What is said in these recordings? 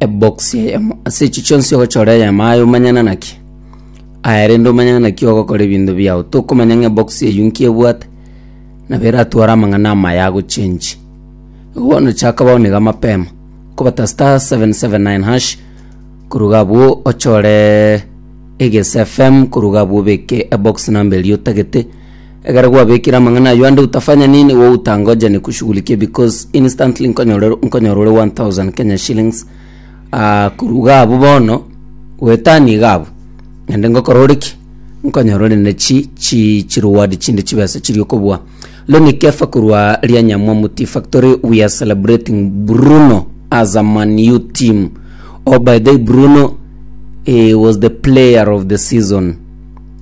Ebokisi eyemo ase echi chionsi ogochora eyamaa aye omanyana naki. Aya rende omanyana naki ogokora ebinto biao. Tokomanya ng'a ebokisi eyio nki ebwate, nabo eratware amang'ana amaya agochengi. Igo bono chaka bao niga mapema, kobata star 779 hash, koruga abwo ochore egese FM koruga abwo obeke ebokisi namba eria otagete, Ekero gwabekire amang'ana ayio ande utafanya nini wo utangoje nikushughulikie because instantly nkonyora nkonyora ore 1000 Kenya shillings ah, korwa iga abwo bono goetania iga abwo naende ngokora ore ki nkonyora ore ne chi chi chireward chinde chibesa chiria okobua Lonny Kefa korwa Rianyamwamu Tea Factory we are celebrating Bruno as a Man U team oh by the way Bruno he was the player of the season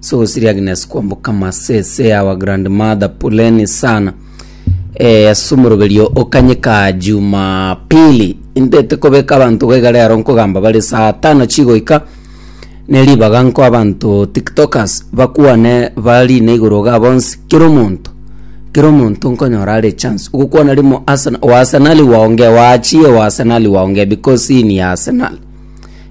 so siri agnes kwamboka masese our grandmother puleni sana eh, ase omoroberio okanyeka jumapili intete kobeka abanto gaiga rero nkogamba bare saa tano chigoika neribaga nko abanto tiktokers bakwane barine igoro ga bonsi kero omonto kero omonto nkonyora are chance ogokwana rimo Arsenal oasenali waonge waachie oasenali waonge because ini ya arsenal